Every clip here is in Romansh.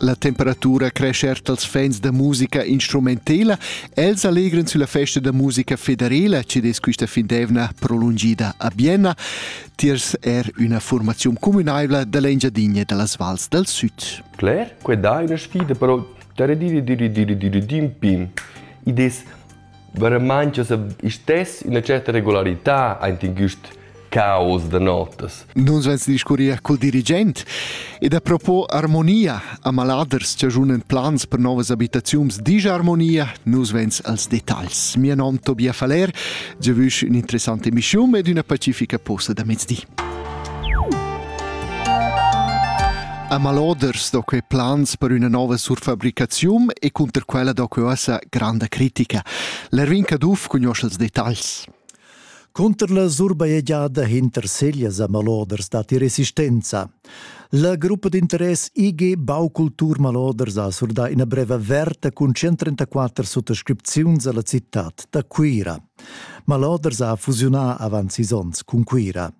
La temperatura crescha er dals fans da musica instrumentela. Els allegran sulla festa da musica federela che es quista findevna prolungida a Bienna. Tiers er üna formaziun communaivla da l'Engiadinha da las vals dal süd. Claire, que dà üna sfida però da redire dire dire dire din pin. Id es Veramein che se istess üna certa regularità aint in güst caos da notas. Nus veins discurrir cul dirigent ed a propos armonia a maladers che giunen plans per novas abitaziuns digia armonia, nus veins als detagls. Mio nom Tobias Faller, je vüsch ün'interessante emissiun ed üna pacifica posta da mezdi. A Maloders do quei plans per üna nova surfabricaziun e cunter quella do quei uossa granda critica. L'Erwin Caduff cugnuoscha els detagls. Cunter la surbajegiada hinter Seglias a Maloders datti resistenza. La gruppa d'interess IG Baukultur Maloders ha surdà ina brev averta cun 134 suttascripziuns alla cittad da Cuira. Maloders ha fusiunà avant sis onns cun Cuira.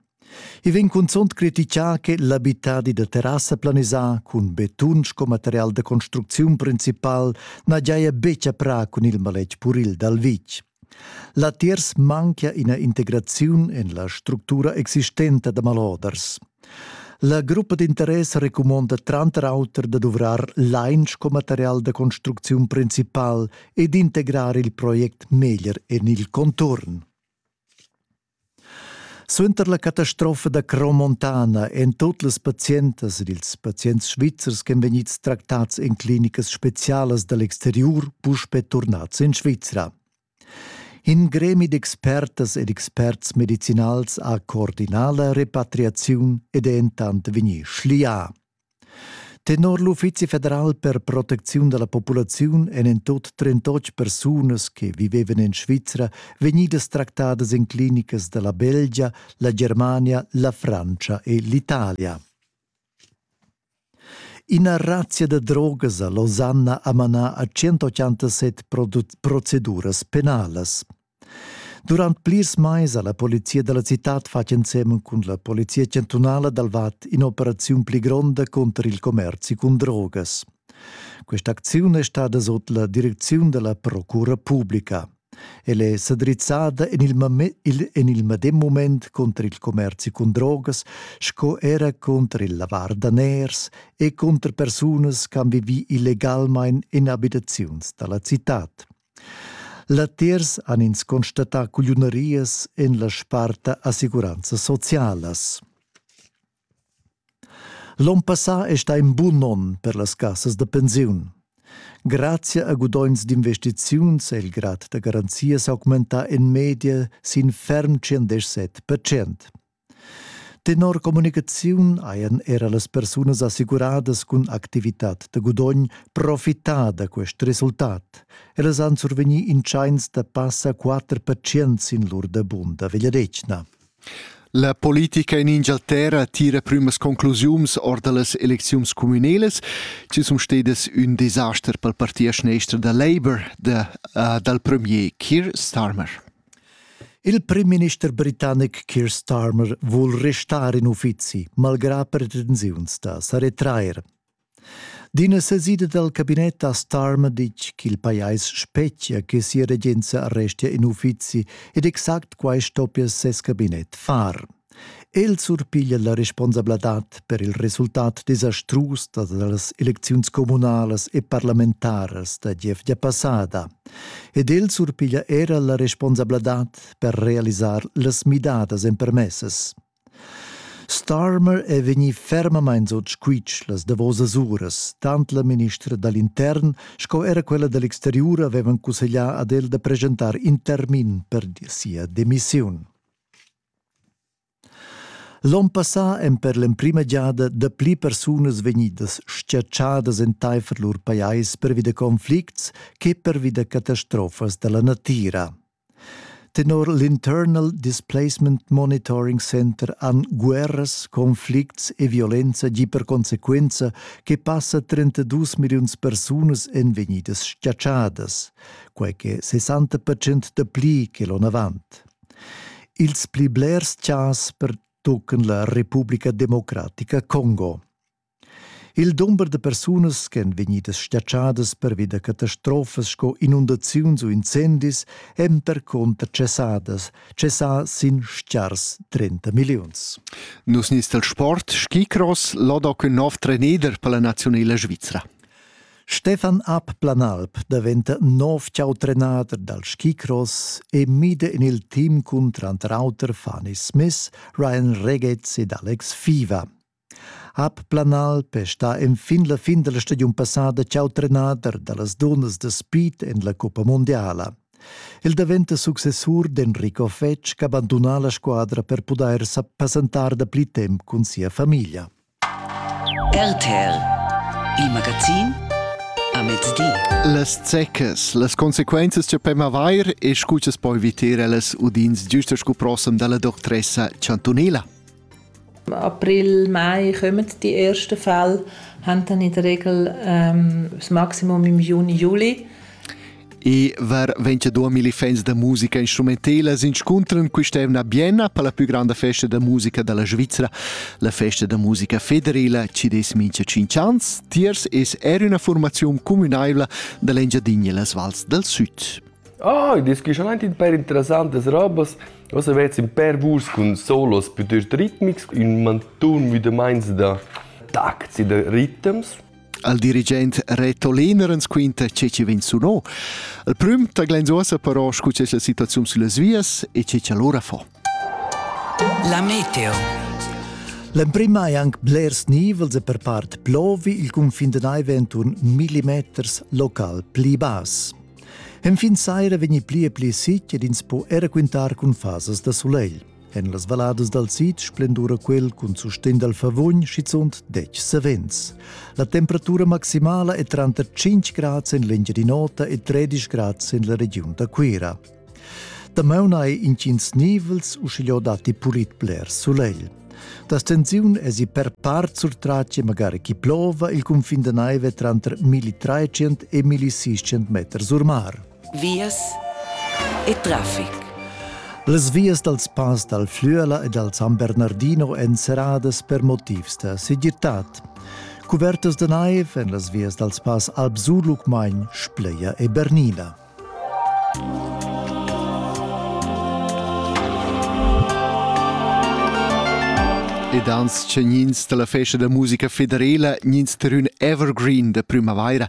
I vegn cunzunt critichà che l'abitadi da terrassa planisà cun betun sco material da construcziun principal na giaja betg a prà cun il maletg puril dal vitg. Latiers manchia ina integraziun en la structura existenta da maloders. La gruppa d'interess recumonda tranter auter da duvrar lain sco material da construcziun principal e d'integrar il project meglier en il conturn. Suenter la catastrofa da Cromontana èn tut las pazientas ed ils pazients svizzers ch'èn vegnids tractads en clinicas spezialas da l'exteriur puspè turnads en Svizra. In gremi d'expertas ed experts medicinals ha coordinà la repatriaziun ed è entant vegnì schlià. Tenor l'Uffizi federal per protecziun da la populaziun èn en tut 38 persunas che vivevan en Svizra vegnidas tractadas en clinicas da la Belgia, la Germania, la Francia e l'Italia. Ina razzia da drogas a Losanna ha manà a 187 proceduras penalas. Durant plirs mais ha la polizia dalla citad fatg ensemen cun la polizia chantunala dal Vad in'operaziun pli gronda cunter il commerzi cun drogas. Quest'acziun è stada sot la direcziun della Procura Publica. Ella è s'adrizzada en il, en il medem moment contro il commerzi con drogas sco era contro il lavar daners e contro persunas che han vivi illegalmain in abitaziuns dalla cittad. Latiers han ins constatà cugliunerias en la sparta assicuranzas socialas. L'onn passà è stà in bun onn per las cassas da pensiun. Grazia a gudogns d'investiziuns è il grad da garanzia s'augmentà en media sin ferm 107%. Tenor communicaziun hajan era las persunas assicuradas cun activitad da gudogn profità da quest resultat. Ellas han survegnì in tschains da passa quatter pazients sin lur dabun da vegliadetgna. La politica in Ingialterra tira prümas conclusiuns or da las elecziuns communelas, ci sun stedas ün desaster pel parti a schnestra da Labour da, uh, dal premier Keir Starmer. Il primminister britannic Keir Starmer vul restar in uffizi, malgrà pretensiuns da sa retrair. D'ina sesida dal cabinet ha Starmer ditg ch'il pajais spetgia che sia regenza restia in uffizi ed exact quai stoppia ses cabinet far. El surpiglia la responsabladad per il resultat desastrus das elecziuns communalas e parlamentaras da gievgia passada ed el surpiglia era la responsabladad per realisar las midadas empermessas. Starmer è vegnì fermamain sut squitsch las davosas uras, tant la ministra dall'intern sco era quella dall'exteriur avevan cusseglià ad el da presentar in termin per sia demissiun. L'on passà èn per l'emprima giada dapli persunas vegnidas tschertgadas entaifer lur pajais pervi da conflicts che pervi da catastrofas da la natira. Tenor l'Internal Displacement Monitoring Center han guerras, conflicts e violenza gì per consequenza che passa 32 milliuns persunas èn vegnidas tschertgadas, quai che 60% dapli che l'onn avant. Ils pli blers chas pertuccan la Republica Democratica Congo. Il dumber da persunas ch'èn vegnidas statschadas pervi da catastrofas sco inundaziuns u incendis èn percunter tschessadas, tschessà sin stgars 30 milliuns. Nus nis dal sport skicross lodo cun nov treneder per la naziunela svizra. Stefan Abplanalp daventa nov chau trenader dal skicross e mida in il team cun trantrauter Fanny Smith, Ryan Regez ed Alex Fiva. Ab Planalp è stà enfin la fin della stagiun passada chau trenader da las dunnas da speed en la Coppa Mondiala. Il daventa successur d'Enrico Fetsch che abbandona la squadra per pudair passentar da pli temp cun sia famiglia. RTL Il magazin a mezdi. Las zeccas, las consequenzas che pem avair e scu che poi viter ellas udins giusta scu prossem dalla doctressa chantunila. April, Mai kommen die ersten Fälle, haben dann in der Regel ähm, das Maximum im Juni, Juli. I var 22.000 fans da musica instrumentelas inscuntran quest'evna Bienna per la più grande festa da musica dalla Svizzera, la festa da musica federela ci des mincha 5 ans. Tiers es er una formazione communaivla dall'Engiadinha las vals del Sud. Ah, oh, das ist schon ein paar interessantes Robos. Also jetzt ein paar Wurst und Solos piuttosto ritmics und man tun wieder meinst da Takts, da Rhythms. al dirigent Reto Lehner ens quinta che chi vegn suno. Il prüm ta glenz'uossa però scu che la situaziun sulle vias e che cha lura fa. La meteo L'emprima è anche blers nivels e per part plovi il confin de naive entorn millimeters local pli bas. Enfin saira vegni pli e pli sicc ed ins po era quintar cun fasas da solegl. En las valladas dal sid splendura quel cun sustegn dal Favogn schizunt dec savens. La temperatura maximala è tranter 5 grads en l'Engiadin'Ota e 13 grads en la regiun da Cuira. Damaun hai intgins nivels, uschigliò datti pulit bler sulegl. Da stensiun esi per part surtrace magari chi plova il cunfin da naive tranter 1300 e 1600 meters or mar. vias e traffic. Las vias dals pass dal Flüela e dal San Bernardino èn serradas per motivs da segirtad. Cuvertas da naiv en las vias dals pass Alp Surlucmagn, Spleia e Bernina. Ed ans tgnins da la festa da musica federela, gnins terün evergreen da prümavaira,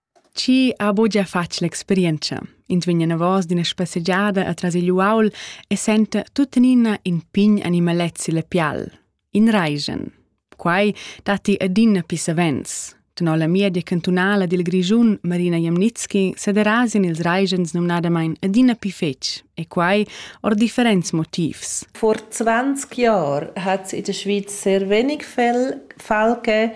Chi ha buca fatg l'experientscha, ins vegn anavos d'ina spassegiada atras igl uaul e senta tuttenina in pign animalet silla pial, in raigen. Quai datti adina pli savens. Tenor la media cantunala dil Grischun Marina Jamnitski sederasian ils raigens numnadamain adina pli fetg, e quai ord differents motivs. Vor 20 Jahren hat es in der Schweiz sehr wenig Fälle gegeben,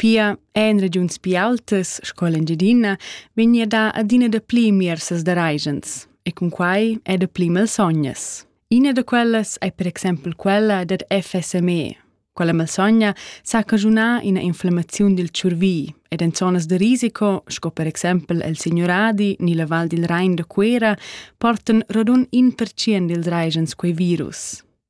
Pia en regiuns pi aultas sco l'Engiadina vegnia dà adina dapli miersas da raigents e cun quai è dapli malsognas. Ina da quellas è per exempel quella dad FSME. Quella malsogna sa cagiunar ina inflammaziun dil tschurvi ed en zonas da risico, sco per exempel el Signuradi ni la Val dil Rein da Cuera, portan rodun in percient dils raigents quei virus.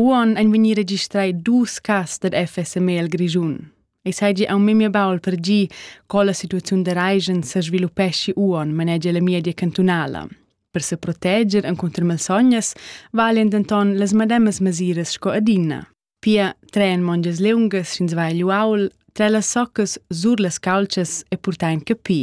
Uon ein vegnì registrai dus cas dad FSME al Grischun. Ei seigi aunc memia baul per gi co la situaziun da Reigen sesviluppeschi Uon, manegia la media cantunala. Per se proteger encunter malsognas valien denton las medemas mesiras sco adina. Pia tren mongias leungas sch'ins va egl uaul, tra las soccas sur las caltschas e purtain capi.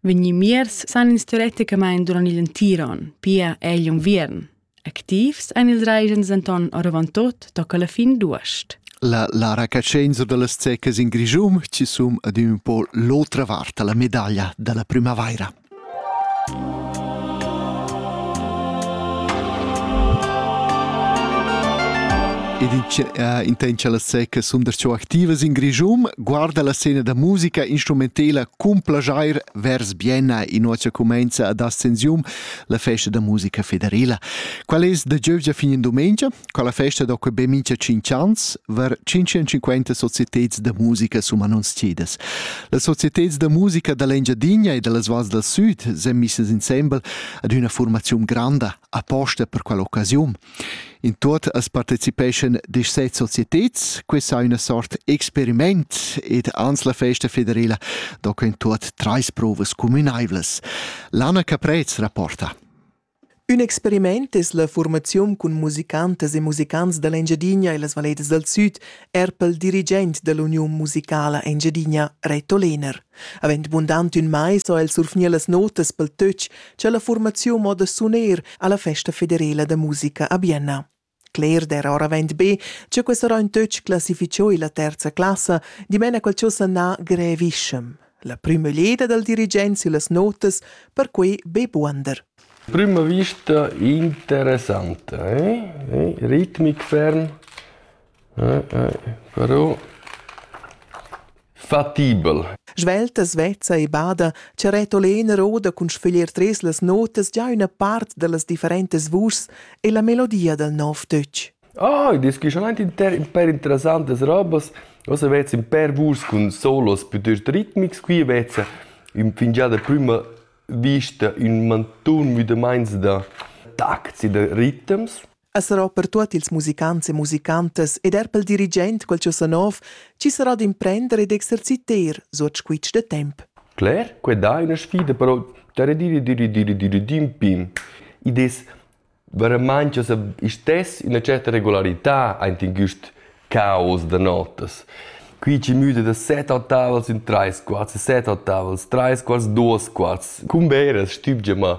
vegnì miers san ins teoreticamain durant igl entir onn, pia egl unviern. Activs ein ils regens denton oravantut tocca la fin d'uost. La Lara Cacenzo dallas Zeccas in Grischum ci sum ad un po l'otra vart la medaglia dalla primavaira. Ed in la secca sum der activas in Grischum guarda la scena da musica instrumentela Cun plaschair vers Bienna inozia cumainza ad ascensium la festa da musica federila. Qual es da giövgia fin in dumengia? Qual la festa da que be mincha 5 ans var 550 societeds da musica sun annunziadas. Las societeds da musica da l'Engiadinha e da las Valls dal Süd s'han misses insembel ad üna formaziun granda. aposta per quell'occasiun. In tuot as partecipeschan disset societeds, questa è una sort experiment ed ans la festa federela do in tuot trais provas cumünaivlas. Lana Caprez rapporta. Ün experiment es la formaziun cun musicantas e musicants da l'Engiadina e las Valletas dal Süd, er pel dirigent da l'Uniun musicala Engiadina, Reto Lehner. Avend bundant ün mais ho el surfgnieu las notas pel töch cha la fuormaziun mo da suner alla festa federela da musica a Bienna. Cler d'eira ora avaunt be cha quest rain töch classificho illa terza classa dimena quel cho sanà grevischem. La prüma leda dal dirigent süllas notas perquai be buonder. Prüma vista interessanta, eh? eh? ritmic ferm, Però fatibel. Svelta, svezza e bada, che Reto Lehner oda cun sföglier tres las notas già üna part da las differentas vuschs e la melodia dal nov töch. Ah, id es gioschamaint inter ün pêr interessantas robas. Ossa vezza ün pêr vuschs cun solos pütöst ritmics. Qui vezza ün fingià da prüma vista ün mantun müdamaints da tacts e da ritms. es sarà per tuot ils musicants e musicantas ed eir pel dirigent quel cho sa nov chi sarà d'imprender e d'exerciter suot squitsch da temp. Claire, que dà üna sfida però da redire dire dire dire din pin. Id es veramente sa istess üna certa regolarità aint in güst caos da notas. Qui ci müde da set ottavals in treis quarts, set ottavals, treis quarts, duos quarts, cum veras, stübgia ma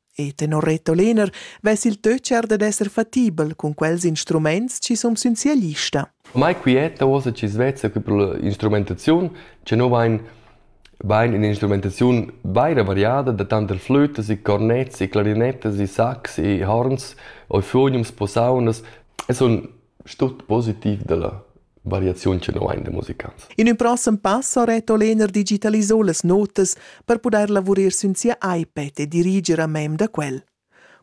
E tenor Reto Lehner vess il töcher dad esser fatibel cun quels instruments chi sun sün sia lista. Mai quieta uossa chi's vezza che pro l'instrumentaziun che no vain vain ün'instrumentaziun vaira variada da tant flütas e cornets e clarinettas e sax e horns o fuoniums, posaunas e sun Ist tut positiv dalla variaziun che nus hain da musicants. In ün prossem pass ha Reto Lehner digitalisà las notas per pudair lavurer sün sia iPad e diriger a mem da quel.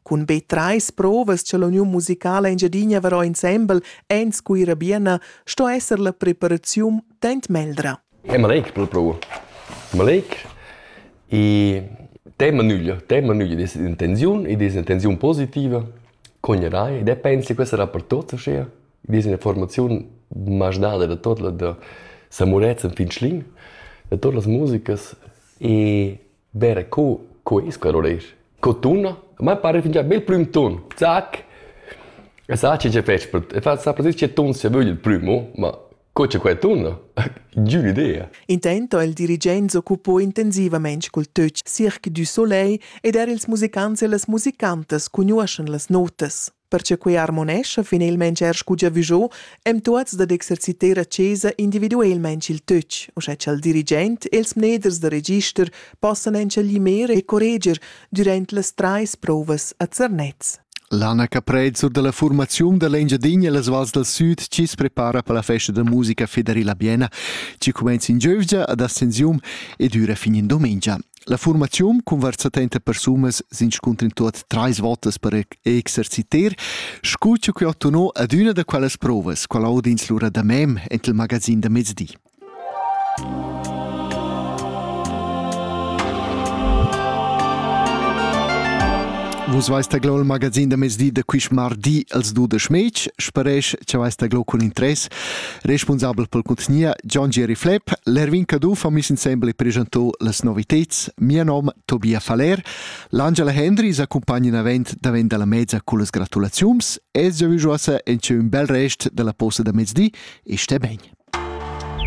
Cun be trais provas cha l'uniun musicala Engiadina varò insembel en Scuira Biena sto esser la preparaziun tant meldra. È maleic per la prova. Maleic e tema nüglia, tema nüglia des intenziun e des intenziun positiva cognarai ed er pensi questa dapertut uschia. I dis ina formaziun maschdada da tot la da Sa Murezzan fin Schlin, da totas las musicas e vera co, co es quel oreir. Co tuna, mai pare fingià bel prüm ton, zac! E sa che che fetsch, e fa sa precis che ton sia vögl il prüm, oh, ma Co c'è quella tunda? Giun idea. Intent ha il dirigent s'occupò intensivamein cul töch Cirque du Soleil ed er ils musicants e las musicantas cugnuoschan las notas. Perche quei harmonescha finalmein er scu giavüschò, em tuots dad exerciter a chesa individuelmaing il töch, uschè cha'l dirigent e ils mneders da register possan entschellimer e correger durant las trais provas a Zernez. L'Anna Caprez sur dalla formaziun dall'Engiadina e las vals dal süd chi's prepara per la festa da musica federila Biena chi cumenza in giövgia ad Ascensium e düra fin in dumengia. La formaziun conversa trenta persunas s'inscuntrin tuot trais votas per exerciter, scu chi ho ottenù adüna da quellas provas, qual aud'ins lura da mem ent il magazin da mezdi. Vus veis taglò il magazin da mezdi da quist mardi als dudesch mec, sparesch cha veis taglò cun interess, responsabel pel contgnia John Jerry Flepp, l'Erwin Caduff ha mis insembel e presentò las noviteds, mia nom Tobia Faller, l'Angela Hendry s'accompagna davent davent dalla mezza con las gratulaziums e giovüjosa en ün bel rest della posta da mezdi e sté ben.